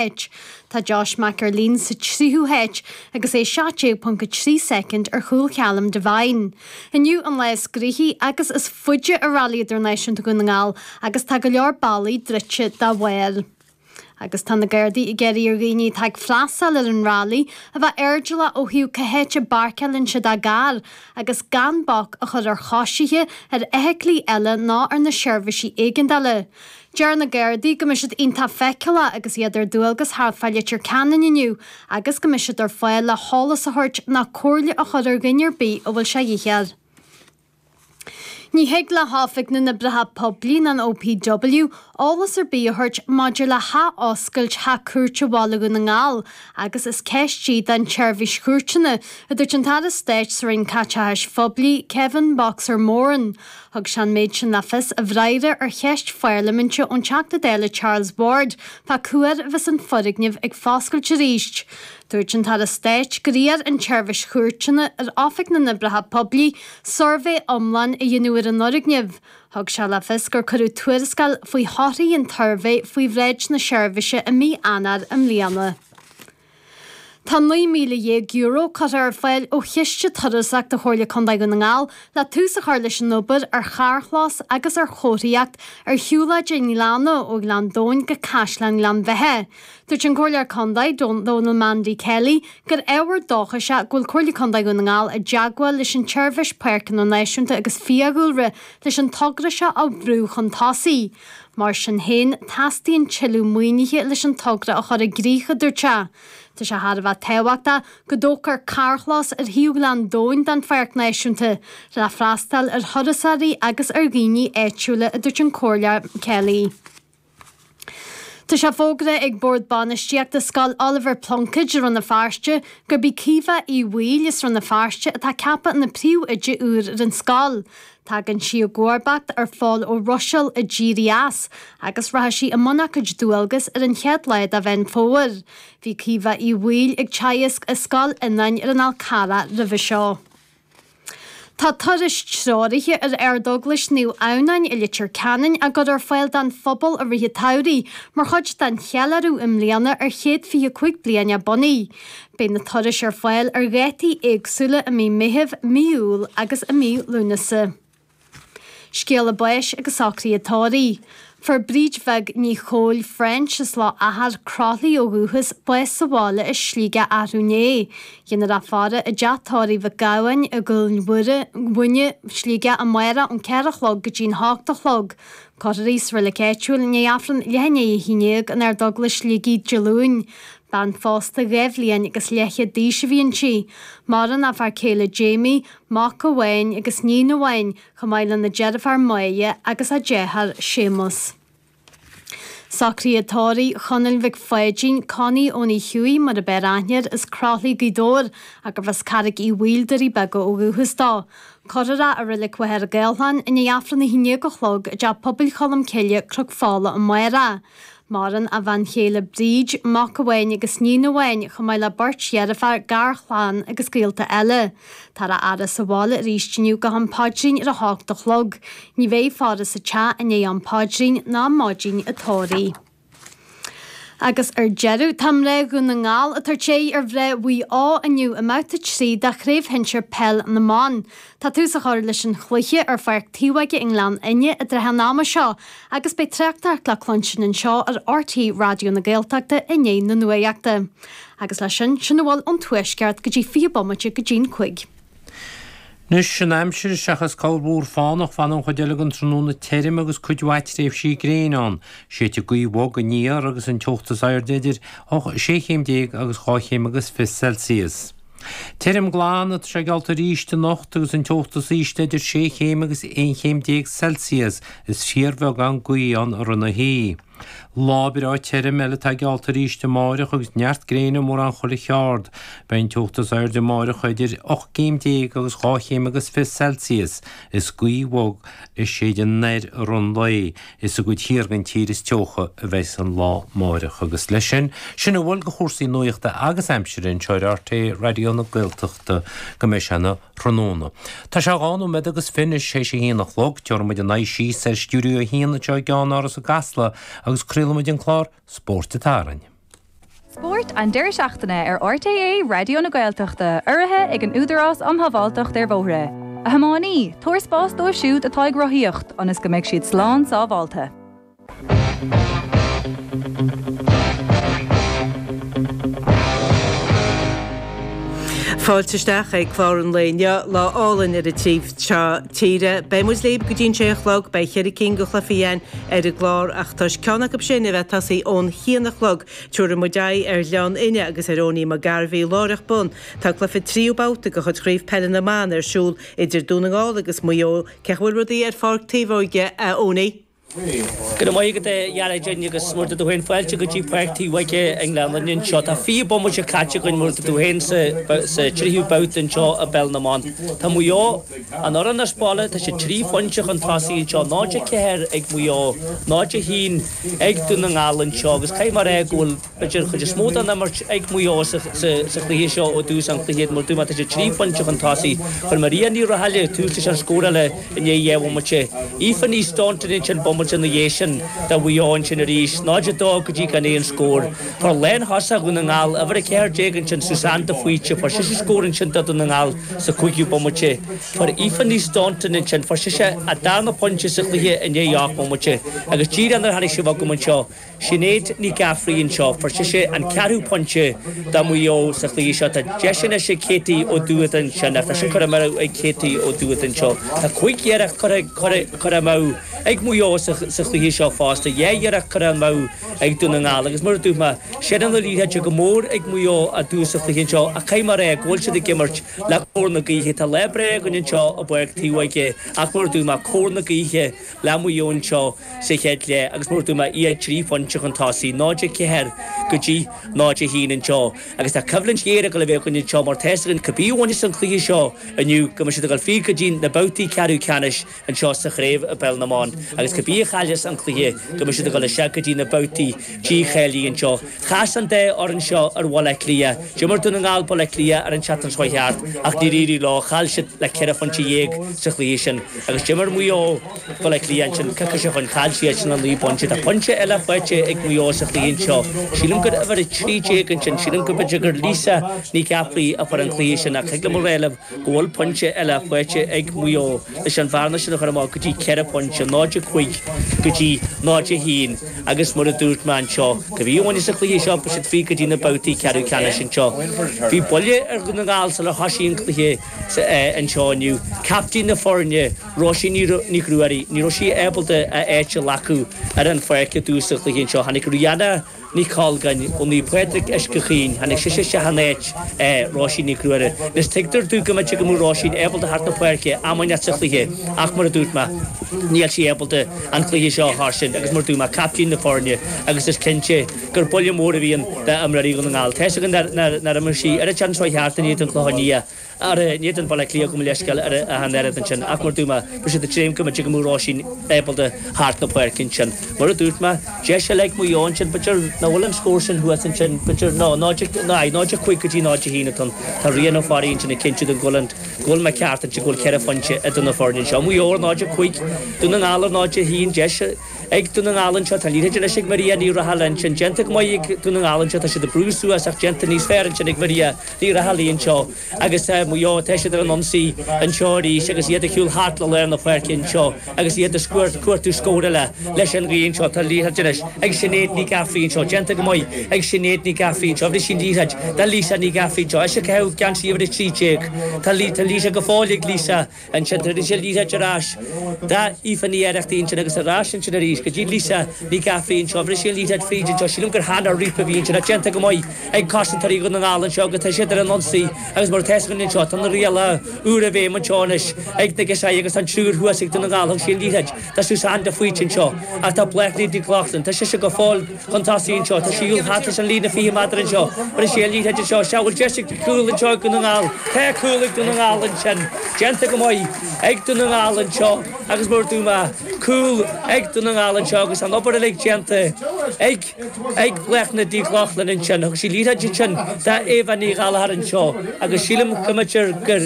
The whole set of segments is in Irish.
háit. Tá Josh McErlean sa tríú háit agus é 17.3 soicind ar chúl Challum Devine. Inniu an lá is gnaithí agus is faide i Railí Idirnáisiúnta Dhún na nGall agus tá go leor bealaigh druidte dá bharr. Agus tá na Gardaí ag iarraidh ar dhaoine atá ag freastáil ar an railí a bheith airdeallach ó thaobh cá háit a bpáirceáileann siad a gcarr agus gan bac a chur ar choisithe, ar fheithiclí eile ná ar na seirbhísí éigeandála. Deir na Gardaí go mbeidh siad iontach feiceálach agus iad ar dualgas thart fá Leitir Ceanainn inniu agus go mbeidh siad ar fáil le heolas a thabhairt ná comhairle a chur ar dhuine ar bith a bhfuil sé dhíth air. Ní thig le hOifig na nOibreacha Poiblí ná an OPW eolas ar bith a thabhairt maidir le hathoscailt Theach Cúirte Bhaile Dhún na nGall agus is ceist í don tSeirbhís Chúirteanna, a dúirt an tAire Stáit sa Roinn Caiteachais Phoiblí, Kevin 'Boxer' Moran. Thug sé an méid sin le fios i bhfreagra ar cheist pharlaiminte ón Teachta Dála Charles Ward fá cá huair a bheas an foirgneamh ag foscailt arís. Dúirt an tAire Stáit gur iarr an tSeirbhís Chúirteanna ar Oifig na nOibreacha Poiblí suirbhé iomlán a dhéanamh ar an fhoirgneamh. Thug sé le fios gur cuireadh tuarascáil faoi thorthaí an tsuirbhé faoi bhráid na seirbhíse i mí Eanáir i mbliana. Tá €19,000 curtha ar fáil ó chiste turasóireachta Chomhairle Contae Dhún na nGall le tús a chur leis an obair ar charrchlós agus ar chomharthaíocht ar shiúlóid an Ghleanna ó Ghleann Domhain go Caisleán Ghleann Bheithe. Dúirt an Comhairleoir Contae, Dónal Mandy Kelly, gur ábhar dóchais é go bhfuil Comhairle Contae Dhún na nGall i dteagmháil leis an tSeirbhís Páirceanna Náisiúnta agus Fiadhúlra leis an togra seo a bhrú chun tosaigh. Mar sin féin, teastaíonn tuilleadh maoinithe leis an togra a chur i gcrích, a dúirt sé. Tá sé thar a bheith tábhachtach go dtógfar carrchlós ar thaobh Ghleann Domhain den Pháirc Náisiúnta le freastal ar thurasóirí agus ar dhaoine áitiúla, a dúirt an Comhairleoir Kelly. Tá sé fógartha ag Bord Bainistíochta Scoil Oilibhéar Pluincéad i Rann na Feirste gurb í Caoimhe Uí Bhaoill as Rann na Feirste atá ceaptha ina Príomh-Oide úr ar an scoil. Tagann sí i gcomharbacht ar Phól Ó Ruisil a d'éirigh as agus rachaidh sí i mbun a cuid dualgas ar an chéad lá de Mheán Fómhair. Bhí Caoimhe Uí Bhaoill ag teagasc i Scoil Fhionáin ar an Fhál Carrach roimhe seo. Tá turais treoraithe ar Ardeaglais Naomh Adhamhnáin i Leitir Ceanainn á gcur ar fáil don phobal i rith an tsamhraidh mar chuid den cheiliúradh i mbliana ar chéad 25 bliain a bunaithe. Beidh na turais ar fáil ar dhátaí éagsúla i mí Meithimh, mí Iúil agus i mí Lúnasa. Scéala báis agus socruithe tórraimh. Fuair Bríd Bheag Ní Chóil, French, as Loch Achair, Croithlí ó dhúchas, bás sa bhaile i Sligeach athrú inné. Déanfar í a fhaire i dteach tórraimh Mhic Gabhann i gCúil Mhuine, Sligeach amáireach ón ceathair a chlog go dtí'n h-ocht a chlog. Cuirfear í sa reilig áitiúil i ndiaidh Aifreann leath i ndiaidh a haon déag in Ardeaglais Shligigh, Dé Luain. Bean phósta dhá bhliain agus leathchéad d'aois a bhí inti. Maireann a fear céile Jamie, mac amháin agus níon amháin, chomh maith lena deirfiúr Moya agus a deartháir Séamus. Socruithe tórraimh Chonaill Mhic Pháidín, Connie Eoiní Hughie mar ab fhearr aithne air, as Croithlí, Gaoth Dobhair, agus as Carraig Uí Bhaoill, Doirí Beaga, ó dhúchas dó. Cuirfear é i reilig Mhachaire Gathlán i ndiaidh Aifreann a haon déag a chlog i dTeach Pobail Cholm Cille, Cnoc Fola, amáireach. Maireann a bhean chéile Bríd, mac amháin agus níon amháin, chomh maith le beirt dheirféar, garchlann agus gaolta eile. Táthar á fhaire sa bhaile arís inniu go ham paidrín ar a hocht a chlog. Ní bheidh faire sa teach i ndiaidh am paidrín, ná maidin an tórraimh. Agus ar deireadh, tá mná Dhún na nGall ag tabhairt aghaidh ar mhná Mhaigh Eo inniu i mbabhta 3 de Chraobh Shinsir Peil na mBan. Tá tús á chur leis an chluiche ar Pháirc Taobhóige i nGleann Fhinne i dtrátha an ama seo agus beidh tráchtaireacht le cluinstin anseo ar RTÉ Raidió na Gaeltachta i ndiaidh na nuaíochta. Agus leis sin, sin a bhfuil ón Tuaisceart go dtí fiche bomaite go dtí'n cúig. Anois an aimsir, seachas corrmhúr fánach, fanfaidh an chuid eile den tráthnóna tirim agus cuid mhaith tréimhsí gréine ann. Séidfidh gaoth bhog aniar agus an teocht is airde idir 6 chéim déag agus dhá chéim agus fiche Celsius. Tirim glan atá sé geallta arís anocht agus an teocht is ísle idir 6 chéim agus 11 chéim Celsius, is fíorbheagán gaoithe ann i rith na hoíche. Lá breá tirim eile atá geallta arís amáireach agus neart gréine mórán chuile cheard. Beidh an teocht is airde amáireach idir 18 céim agus 22 chéim Celsius, is gaoth bhog ag séideadh anoir i rith an lae, Is i gcuid thiar den tír is teocha a bheas an lá amáireach agus leis sin, sin a bhfuil de chúrsaí nuachta agus aimsire anseo ar RTÉ Raidió na Gaeltachta go mbeidh sé ina thráthnóna. Tá sé a dhá nóiméad agus fiche anois théis a haon a chlog. Tabharfaidh muid ár n-aghaidh síos ar Stiúideo a haon anseo i gceannáras i gCasla agus craolaidh muid an clár Spórt an tSathairn. Spórt an deireadh seachtaine ar RTÉ Raidió na Gaeltachta, urraithe ag an Údarás um Shábháilteacht ar Bhóithre. A thiománaí, tabhair spás dóibh siúd atá ag rothaíocht ionas go mbeidh siad slán sábháilte. Fáilte isteach ag Clár an Lae inniu, lá álainn ar an taobh seo tíre. Beidh muid libh go dtí an sé a chlog, beidh cheithre cinn de chluifí againn, ar an gclár ach toisc ceann acu sin a bheith tosaithe ón haon a chlog, tabharfaidh muid aghaidh ar Ghleann Fhinne agus ar Eoiní Mac Gairbheith, láithreach bonn. Tá cluiche tríú babhta de chuid Chraobh Peile na mBan ar siúl idir Dún na nGall agus Maigh Eo. Cén chaoi a bhfuil rudaí ar Pháirc Taobhóige, a Eoiní? Go raibh maith agat, a Dheartháir Dheirne, agus mar a dúirt tú féin, fáilte go dtí Páirc Taobhóige i nGleann Fhinne anseo. Tá fiche bomaite caite againn mar a dúirt tú féin sa tríú babhta anseo i bPeil na mBan. Tá Maigh Eo. An fhoireann as baile, tá siad trí phointe chun tosaigh anseo, 0-4 ag Maigh Eo, 0-1 ag Dún na nGall anseo agus caithfidh mé a rá go bhfuil b'fhéidir an chuid is mó den imirt ag Maigh Eo sa chluiche seo ó thús an chluiche. Mar a dúirt mé, tá siad trí phointe chun tosaigh. Chuir Maria Ní Raghallaigh tús leis an scóráil i ndiaidh dhá bhomaite. Aoife Ní Staunton ansin bomaite ina dhiaidh sin do Mhaigh Eo ansin arís, 0-2 go dtí gan aon scór. Fuair lántosaí Dhún na nGall uimhir 14 ansin, Suzanne de Faoite, fuair sise scór ansin do Dhún na nGall sa chúigiú bomaite. Fuair Aoife Ní Staunton ansin, fuair sise a darna pointe sa chluiche i ndiaidh ocht mbomaite. Agus díreach nuair a tháinig sibh agam anseo, Sinéad Ní Ghafraidh anseo, fuair sise an ceathrú pointe do Mhaigh Eo sa chluiche seo. Tá deis anois ag Katie Ó Dúiche ansin, iarracht eile curtha amú ag Katie Ó Dúiche anseo. Tá cúig iarracht curtha amú ag Maigh Eo sa chluiche seo fosta, dhá iarracht curtha amú. ag Dún na nGall agus mar a dúirt mé, seilbh na liathróide go mór ag Maigh Eo i dtús an chluiche anseo ach caithfidh mé a rá go bhfuil siad ag imirt le cóir na gaoithe. Tá lá breá againn anseo i bPáirc Taobhóige ach mar a dúirt mé cóir na gaoithe le Maigh Eo anseo sa chéad leath agus mar a dúirt mé iad trí phointe chun tosaigh, 0-4 go dtí 0-1 anseo, agus tá coimhlint ghéar ag dul a bheith againn anseo mar tá a fhios againn cibé a bhainfeas an cluiche seo inniu go mbeidh siad ag dul fríd go dtí na babhtaí ceathrú ceannais. anseo sa chraobh i bpeil na mban agus cibé a chailleas an cluiche go mbeidh siad ag dul isteach go dtí na babhtaí dícháilithe anseo. Chas an dá fhoireann seo ar Bhaile Átha Cliath. D'imir Dún na nGall Baile Átha Cliath ar an tseachtain seo a chuaigh thart ach níor éirigh leo. Chaill siad le ceithre phointe dhéag sa chluiche sin agus d'imir Maigh Eo Baile Átha Cliath ansin coicís ó shin. Chaill siadsan le naoi bpointe. Tá pointe eile faighte ag Maigh Eo sa chluiche anseo. Sílim gur uimhir a trí déag ansin. Sílim go mb'fhéidir gur Lisa Ní Ghafraidh a fuair an cluiche sin ach thig liom a rá libh go bhfuil pointe eile faighte ag Maigh Eo leis an bhearna sin a chur amach go dtí ceithre phointe, 0-5 go dtí 0-1, agus mar a dúirt mé anseo, cibé a bhaineas an chluiche seo, beidh siad fríd go dtí na babhtaí ceathrú ceannais anseo. Bhí buille ar Dhún na nGall sular thosaigh an cluiche anseo inniu. Captaen na foirne, Róisín Nic Ruairí, ní raibh sí ábalta a áit a ghlacadh ar an pháirc i dtús an chluiche anseo. Tháinig Rihanna. Ní Colgáin, ó Naomh Pádraig Uisce Chaoin, tháinig sise isteach in áit Róisín Nic Ruairí. Anois tuigtear dúinn go mb'fhéidir go mbeadh Róisín ábalta teacht chun na páirce am inteacht sa chluiche, ach mar a dúirt mé, níl sí ábalta an cluiche seo a thoiseacht agus mar a dúirt mé, caiptín na foirne agus is cinnte gur buille mór a bhí ann d'imreoirí Dhún na nGall. Tá 'fhios againn nár imir sí ar an tseachtain seo a chuaigh thart in éadan Bhaile Átha Cliath. Ar ndóigh den Bhaile Átha Cliath gabh mo leithscéal ar a an oiread ansin, ach mar dúirt mé, bhí sé de dhream go mbeidh an mhór Oisín ábalta thart na páirce ansin. Mar a dúirt mé, deis eile ag Maigh Eo ansin, b'fhéidir, nach bhfuil an scór sin thuas ansin, b'fhéidir, ná, ná, aye, 0-5 go dtí 0-1 atá an, tá Ryan Ferry ansin ag cinntiú domh go bhfuil an, go bhfuil mé ceart ansin, go bhfuil ceithre phointe idir na foirne anseo. Maigh Eo ar 0-5, Dún na nGall ar 0-1, deis, Ag Dún na nGall anseo, tá liathróid anois ag Maria Ní Raghallaigh. Ansin, déanta go maith ag Dún na nGall anseo, tá siad ag brú suas ach déanta níos fearr ansin ag Maria Ní Raghallaigh anseo. Agus, Maigh Eo, tá siad ar an ionsaí anseo arís agus iad ag gabháil thart le lár na páirce anseo agus iad ag cuartú scóir eile. Leis an ghaoth anseo, tá liathróid anois ag Sinéad Ní Ghafraidh anseo. Déanta go maith ag Sinéad Ní Ghafraidh anseo. Bheir sí an liathróid do Lisa Ní Ghafraidh anseo. Ise ag caitheamh geansaí uimhir a trí déag. Tá liathróid go fóill ag Lisa. Ansin thug sí an liathróid ar ais d'Aoife Ní Oireachtaigh ansin agus ar ais ansin arís go dtí Lisa Ní Ghafraidh anseo. Bheir sí an liathróid fríd anseo. Sílim gur Hannah Reape a bhí ansin. Tá déanta go maith ag cosantóirí Dhún na nGall anseo agus tá siad ar an ionsaí agus mar atá a fhios againn anseo, tá na rialacha úra i bhfeidhm anseo anois ag na girseachaí agus tá an triúr thuas ag Dún na nGall. Thug sí an liathróid. Do Suzanne de Faoite anseo, ach tá Bláthnaid Nic Lochlainn, tá sise go fóill chun tosaigh anseo, tá sí ag gabháil trasna an líne 20 méadar anseo, bheir sí an liathróid anseo is ea an bhfuil deis ag cúl anseo ag Dún na nGall. Tá cúl ag Dún na nGall ansin, déanta go maith ag Dún na nGall anseo agus mar dúirt mé, cúl ag Dún na nGall anseo agus an obair uilig déanta ag. Ag Bláthnaid Nic Lochlainn ansin. Thug sí liathróid ansin d'Éabha Ní Ghallchóir anseo agus sílim go mb'fhéidir gur,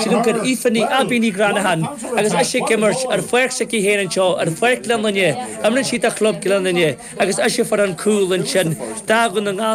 sílim gur Aoife Ní, Aibí Ní Ghreanacháin agus ise ag imirt ar pháirc s'aici féin anseo, ar Pháirc Ghleann Fhinne, imríonn sí do Chlub Ghleann Fhinne agus ise a fuair an cúl ansin do Dhún na nGall.